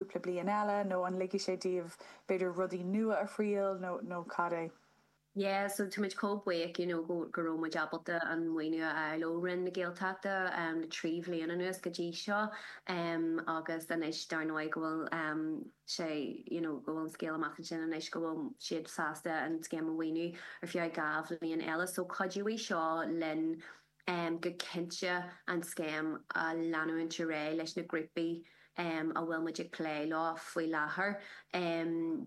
cúpla bliain eile nó an ligfidh sé daoibh b'fhéidir rudaí nua a thriail nó cad é? Yeah so táimid chomh buíoch you know go go raibh muid ábalta an maoiniú a fháil ó Roinn na Gaeltachta le trí bhliain anuas go dtí seo agus anois dar ndóigh go bhfuil sé you know go bhfuil an scéal amach ansin anois go bhfuil siad sásta an scéim a mhaoiniú ar feadh dhá bhliain eile so cuideoidh seo linn go cinnte an scéim a leanúint ar aghaidh leis na grúpaí a bhfuil muid ag plé leo faoi láthair.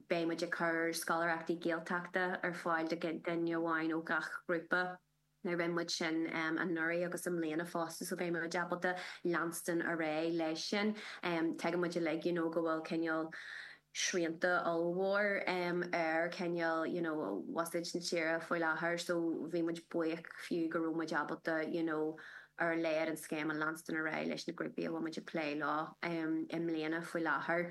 Beidh muid ag cur scoláireachtaí Gaeltachta ar fáil do dhuine amháin ó gach grúpa. Rinne muid sin anuraidh agus i mbliana fosta so beidh muid ábalta leanstan ar aghaidh leis sin. Tuigeann muid uilig you know go bhfuil cineál, srianta ollmhór ar cineál you know buiséad na tíre faoi láthair so bhí muid buíoch fiú go raibh muid ábalta you know ar a laghad an scéim a leanstan ar aghaidh leis na grúpaí a bhfuil muid ag plé leo i mbliana faoi láthair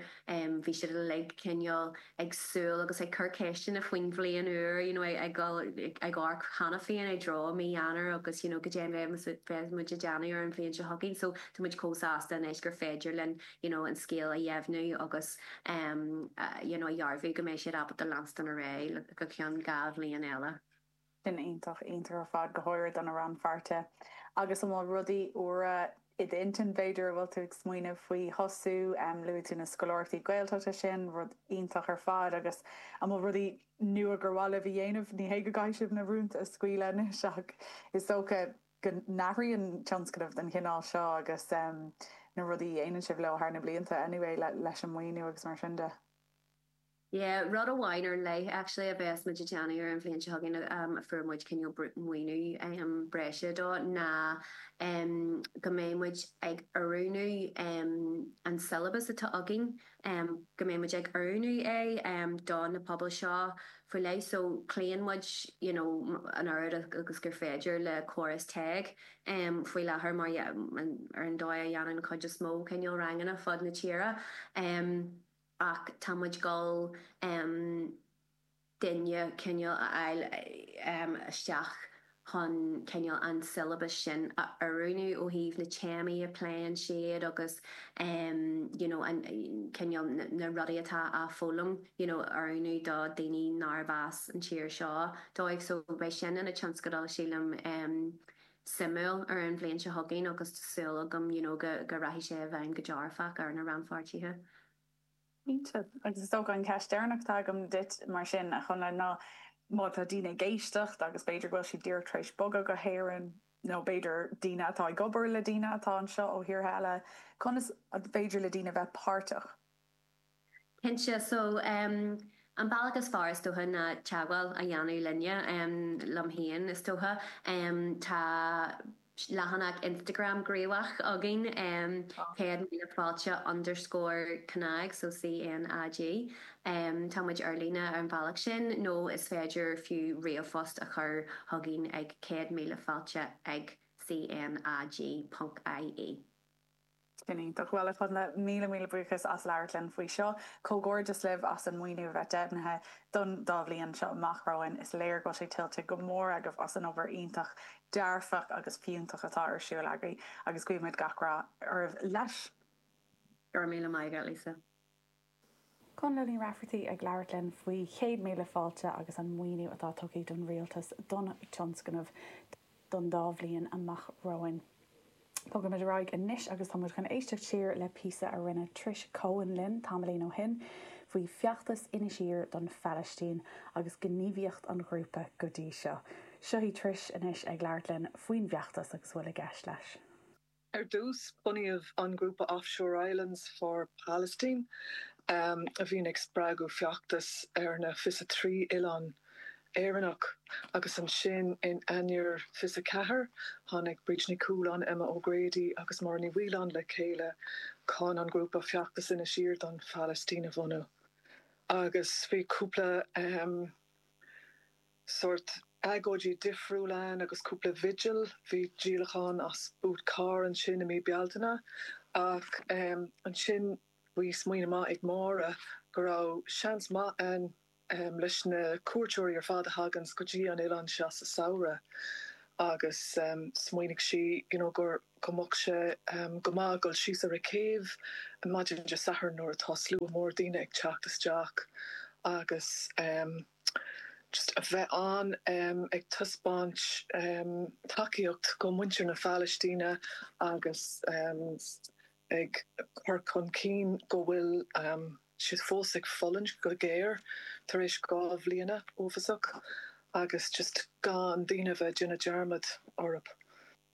bhí siad uilig cineál ag súil agus ag cur ceisteanna faoin bhliain úr you know ag ag ag amharc cheana féin i dtreo mhí Eanáir agus you know goidé a bheadh muid ag déanamh ar an bhliain seo chugainn so tá muid chomh sásta anois gur féidir linn you know an scéal a dheimhniú agus you know a dhearbhú go mbeidh siad ábalta leanstan ar aghaidh go ceann dhá bhliain eile. Sin iontach iontach ar fad, go háirid do na rannpháirtithe. Agus an bhfuil rudaí úra i d'intinn b'fhéidir a bhfuil tú ag smaoineamh faoi thosú? Luaigh tú na scoláireachtaí Gaeltachta sin, rud iontach ar fad agus an bhfuil rudaí nua gur mhaith libh a dhéanamh? Ní hé go gcaithfidh sibh na rúnta a scaoileadh anois ach is dócha. go n-athraíonn tionscnaimh den chineál seo agus na rudaí a dhéanann sibh leo thar na blianta anyway leis an maoiniú agus mar sin de? Yeah, rud amháin ar leith actually a bheas muid ag déanamh ar an bhliain seo chugainn a fuair muid cineál maoiniú breise dó ná go mbeidh muid ag oiriúnú an syllabus atá againn em go mbeidh muid ag oiriúnú é em do na pobail seo faoi leith so cloíonn muid you know an oiread agus gur féidir le córas TEG em faoi láthair mar yeah an ar an dóigh a dhéanann an chuid is mó cineál ranganna fud na tíre em ach tá muid ag gabháil em duine cineál a fháil isteach chun cineál an siollabas sin a oiriúnú ó thaobh na téamaí a pléann siad agus you know cineál na rudaí atá á foghlaim you know a oiriúnú do daoine nárbh as an tír seo dóibh so beidh sin ina tionscadal sílim suimiúil ar an bhliain seo chugainn agus tá súil agam you know go rachaidh sé i bhfeidhm go dearfach ar na rannpháirtithe. Cinnte. Agus is dócha an cheist deireanach atá agam duit mar sin, a Chonla, ná má tá daoine ag éisteacht agus b'fhéidir go bhfuil siad díreach tar éis bogadh go hÉirinn nó b'fhéidir daoine atá ag obair le daoine atá anseo ó thíortha eile, conas an féidir le daoine bheith páirteach? Cinnte. So, an bealach is fearr is dócha ná teagmháil a dhéanamh linne, liom féin is dócha. Tá. Tá leathanach Instagram gníomhach againn, 'Céad Míle Fáilte underscore cnag, so CNAG. Tá muid ar líne ar an bhealach sin nó is féidir fiú ríomhphost a chur chugainn ag céad míle fáilte ag CNAG ponc ie. Sin iontach. Bhuel, a Chonla, míle, míle buíochas as labhairt linn faoi seo. Comhghairdeas libh as an maoiniú a bheith deimhnithe don dá bhliain seo amach romhainn. Is léir go bhfuil sé tuillte go mór agaibh as an obair iontach, dearfach agus fiúntach atá ar siúl agaibh agus guímid gach rath oraibh leis. Go raibh míle maith agat, Lisa. Conla Ní Raifeartaigh ag labhairt linn faoi Chéad Míle Fáilte agus an maoiniú atá tugtha don Rialtas don tionscnamh don dá bhliain amach romhainn. Bogfaimid ar aghaidh anois agus tá muid chun éisteacht siar le píosa a rinne Trish Coen linn tamaillín ó shin faoi feachtas Inis Oírr don Phalaistín agus gníomhaíocht an ghrúpa go dtí seo. Seo í Trish anois ag labhairt linn faoin bhfeachtas agus a bhfuil i gceist leis. Ar dtús, bunaíodh an grúpa Offshore Islands for Palestine, a bhíonn ag spreagadh feachtas ar na 23 oileán Éireannach, agus ansin in Eanáir 24, tháinig Bríd Ní Chualáin, Emma O'Grady agus Máire Ní Mhaoileáin le chéile chun an grúpa feachtais Inis Oírr don Phalaistín a bhunú, agus bhí cúpla. sórt agóidí difriúil ann agus cúpla vigil. Bhí díolachán as boot car ansin i mí Bealtaine ach ansin bhí smaoineamh maith ag Máire go raibh seans maith ann leis na cuairteoirí ar fad a thaganns go dtí an oileán seo sa samhradh agus smaoinigh sí you know gur go mbeadh sé go maith dul síos ar an gcéibh maidin Dé Sathairn nuair atá slua mór daoine ag teacht isteach agus. just a bheith ann ag taispeáint tacaíocht go muintir na Palaistíne agus ag cur chun cinn go bhfuil siad fós ag fulaingt go géar tar éis dhá bhliana uafasach agus just gan daoine a bheith ag déanamh dearmad orthu.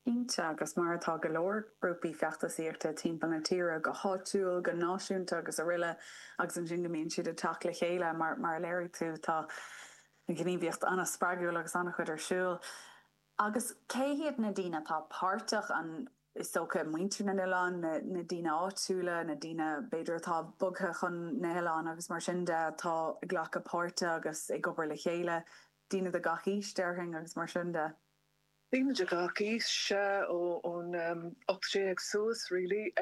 Cinnte, agus mar atá go leor grúpaí feachtasaíochta timpeall na tíre, go háitiúil, go náisiúnta agus araile, agus ansin go mbíonn siad ag teacht le chéile, mar a léirigh tú, tá gníomhaíocht an-spreagúil agus an-chuid ar siúl. Agus cé hiad na daoine atá páirteach? An, is dócha, muintir na n-oileán, na, na daoine áitiúla, na daoine, b'fhéidir, atá bogtha chun na n-oileán agus mar sin de, atá ag glacadh páirte agus ag obair le chéile, daoine de gach aois, déarfainn, agus mar sin de. Daoine de gach aois, sea, ón 18 suas really.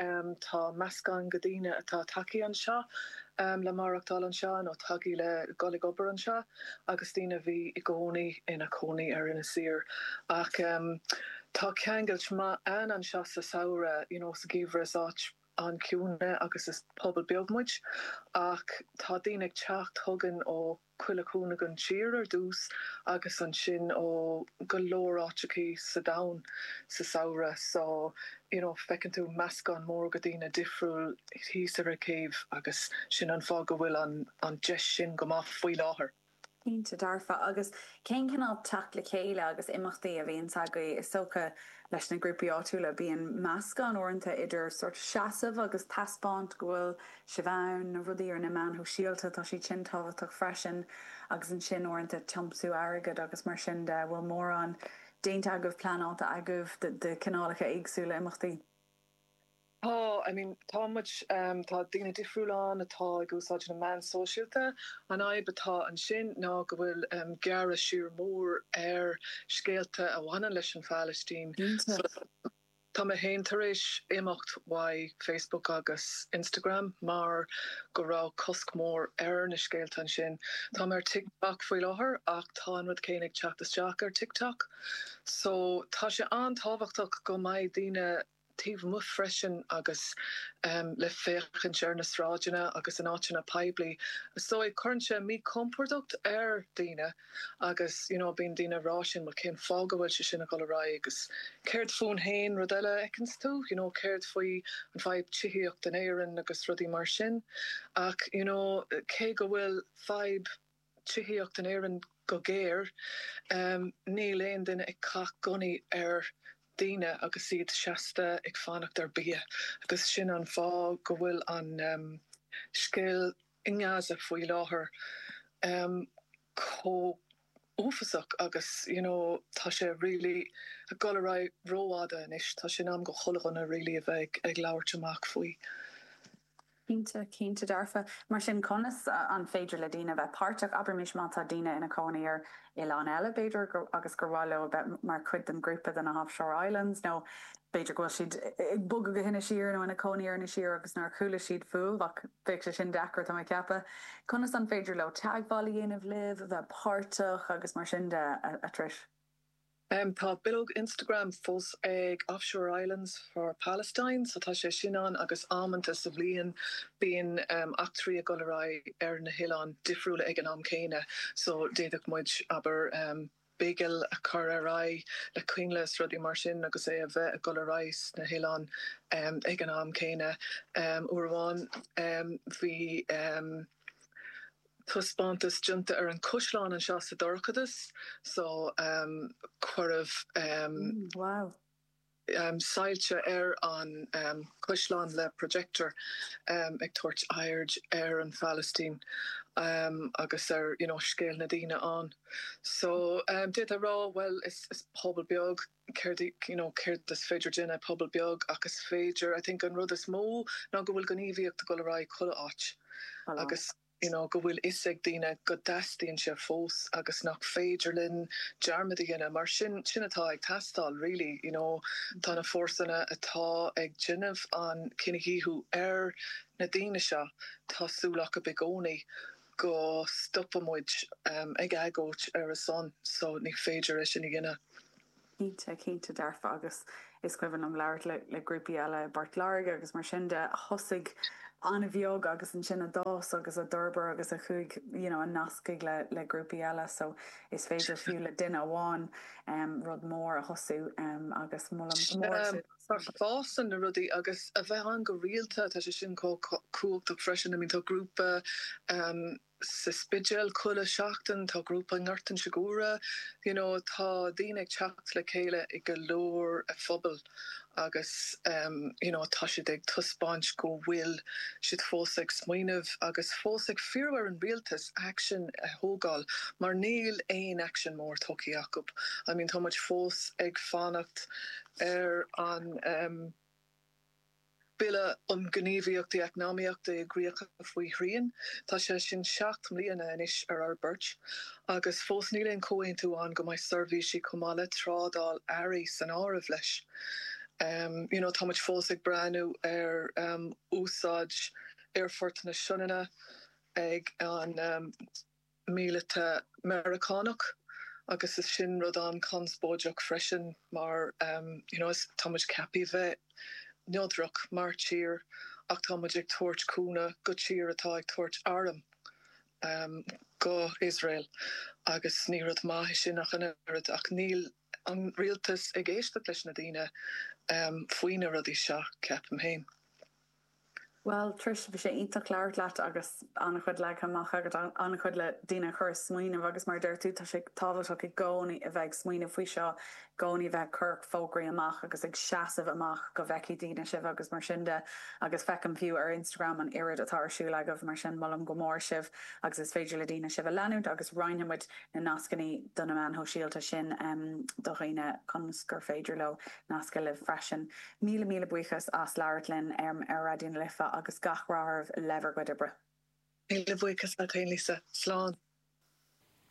Tá meascán de dhaoine atá tagthaí anseo le maireachtáil anseo nó tagthaí le dhul ag obair anseo agus daoine a bhí i gcónaí ina gcónaí ar Inis Oírr. Ach tá ceangailt maith ann anseo sa samhradh, you know sa gheimhreadh is áit an-chiúin agus is pobal beag muid ach tá daoine ag teacht chugainn ó. chuile chúinne den tír ar dtús agus ansin ó go leor áiteachaí sa domhan sa samhradh so you know feiceann tú meascán mór de dhaoine difriúil thíos ar an gcéibh agus sin an fáth go bhfuil an an deis sin go maith faoi láthair. Cinnte, dearfa. Agus cén cineál teacht le chéile agus imeachtaí a bhíonn agaibh is dócha leis na grúpaí áitiúla? Bíonn meascán uaireanta idir sórt seasamh agus taispeáint go bhfuil suas ann, na rudaí ar na meáin sóisialta, tá siad sin tábhachtach freisin agus ansin uaireanta tiomsú airgid agus mar sin de, an bhfuil mórán déanta agaibh, pleanáilte agaibh de chineálacha éagsúla imeachtaí? Tá, I mean tá muid, tá daoine difriúla ann atá ag úsáid na meán sóisialta, an fhadhb atá ansin ná go bhfuil gearradh siar mór ar scéalta a bhaineann leis an Phalaistín. Cinnte. Tá mé féin tar éis imeacht uaidh Facebook agus Instagram mar go raibh cosc mór ar na scéalta ansin. Tá mé ar TikTok faoi láthair ach tá an rud céanna ag teacht isteach ar TikTok. So tá sé an-tábhachtach go mbeadh daoine taobh amuigh freisin agus le féachaint ar na sráideanna agus in áiteanna poiblí. So cuireann sé míchompordacht ar daoine. agus you know bíonn daoine ag rá sin bhuel cén fáth go bhfuil sé sin ag dul ar aghaidh agus céard fúinn féin? Rud eile a fheiceanns tú you know céard faoi an fhadhb tithíocht in Éirinn agus rudaí mar sin ach you know cé go bhfuil fadhb tithíocht in Éirinn go géar em níl aon duine ag caith gunnaí ar dhaoine agus iad seasta ag fanacht ar bia agus sin an fáth go bhfuil an em scéal i nGaza faoi láthair, chomh uafasach agus you know tá sé really ag dul ar aghaidh ró-fhada anois, tá sé in am do chuile dhuine really a bheith ag labhairt amach faoi. Cinnte, cinnte dearfa. Mar sin conas an féidir le daoine a bheith páirteach, abraimis má tá daoine ina gcónaí ar oileán eile b'fhéidir agus gur mhaith leo a bheith mar chuid den ghrúpa de na offshore islands nó b'fhéidir go bhfuil siad ag bogadh go hInis Oírr nó ina cónaí ar Inis Oírr agus nár chuala siad fúibh ach bheadh sé sin deacair tá mé ag ceapadh. Conas an féidir leo teagmháil a dhéanamh libh, bheith páirteach agus mar sin de, a Trish? Tá bileog Instagram fós ag Offshore Islands for Palestine so tá sé sin ann agus amanta sa bhliain bíonn eachtraí ag dul ar aghaidh ar na hoileáin difriúla ag an am céanna so d'fhéadfadh muid, abair, bigil a chur ar aghaidh le coinnle is rudaí mar sin agus é a bheith ag dul ar aghaidh sna hoileáin ag an am céanna. Uair amháin bhí. Taispeántas déanta ar an gCaisleán anseo sa dorchadas so cuireadh soilse ar an gCaisleán le projector ag tabhairt aird ar an Phalaistín agus ar scéal na ndaoine ann. So d'fhéadfá rá bhuel is pobal beag céard you know céard is féidir déanamh pobal beag ach is féidir I think an rud is mó ná go bhfuil gníomhaíocht ag dul ar aghaidh chuile áit agus you know go bhfuil fhios ag daoine go dteastaíonn sé fós agus nach féidir linn dearmad a dhéanamh mar sin sin atá ag teastáil really you know tá na fórsanna atá ag déanamh an cinedhíothú ar na daoine seo tá súil acu i gcónaí go stopadh muid ag agóid ar a son so ní féidir é sin a dhéanamh. Cinnte, cinnte dearfa agus is cuimhin liom labhairt le le grúpaí eile i bPort Láirge agus mar sin de a thosaigh an-bheag agus ansin a d'fhás agus a d'fhorbair agus a chuaigh you know a nascaigh le le grúpaí eile so is féidir fiú le duine amháin rud mór a thosú agus molaim go mór Mar fásann na rudaí agus a bheith ann go rialta, tá sé sin chomh cumhachtach freisin. I mean tá grúpa sa Spidéal chuile sheachtain, tá grúpa i nGort Inse Guaire, you know tá daoine ag teacht le chéile i go leor phobail agus you know tá siad ag taispeáint go bhfuil siad fós ag smaoineamh agus fós ag fíorú ar an rialtas action a thógáil mar níl aon action mór tógtha acu. I mean tá muid fós ag fanacht. ar an mBille um Ghníomhaíochtaí Eacnamaíochta i gCríocha faoi Shrian. Tá sé sin seacht mbliana anois ar an mbealach agus fós níl aon chomhaontú ann go mbeidh seirbhísí chomh maith le trádáil earraí san áireamh leis. You know, tá muid fós ag breathnú ar úsáid Aerfort na Sionainne ag an. míleata Meiriceánach agus is sin rud an-chonspóideach freisin mar you know is tá muid ceapaithe bheith neodrach mar thír ach tá muid ag tabhairt cúnamh do thír atá ag tabhairt arm go Iosrael agus ní rud maith é sin ach an oiread ach níl an rialtas ag éisteacht leis na daoine faoi na rudaí seo, ceapaim féin. Bhuel, Trish, bhí sé iontach labhairt leat agus an-chuid leagtha amach agat, an-chuid le daoine a chur ag smaoineamh agus mar a dúirt tú, tá sé tábhachtach i gcónaí a bheith ag smaoineamh faoi seo, i gcónaí a bheith ag cur fógraí amach agus ag seasamh amach go bhfeicfidh daoine sibh agus mar sin de agus feicim fiú ar Instagram an oiread atá ar siúl agaibh mar sin molaim go mór sibh agus is féidir le daoine sibh a leanúint agus roinnfidh muid na nascannaí do na meáin shóisialta sin do dhaoine ionas gur féidir leo nascadh libh freisin. Míle míle buíochas as labhairt linn ar Raidió na Life agus gach rath oraibh le bhur gcuid oibre. Míle buíochas leat féin Lisa. Slán.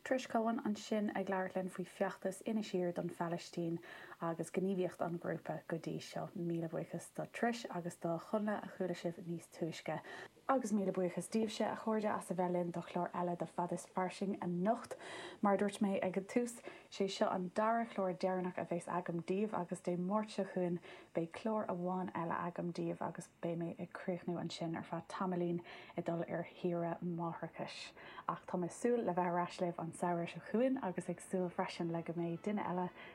Trish Coen ansin ag labhairt linn faoi feachtas Inis Oírr don Phalaistín agus gníomhaíocht an ghrúpa go dtí seo. Míle buíochas do Trish agus do Chonla a chuala sibh níos túisce. Agus míle buíochas daoibhse, a chairde, as a bheith linn do chlár eile de Fad is Fairsing anocht. Mar a dúirt mé ag an tús, sé seo an dara chlár deireanach a bheas agam daoibh agus Dé Máirt seo chugainn beidh clár amháin eile agam daoibh agus beidh mé ag críochnú ansin ar feadh tamaillín ag dul ar shaoire máithreachais. Ach tá mé ag súil le bheith ar ais libh an samhradh seo chugainn agus ag súil freisin le go mbeidh duine eile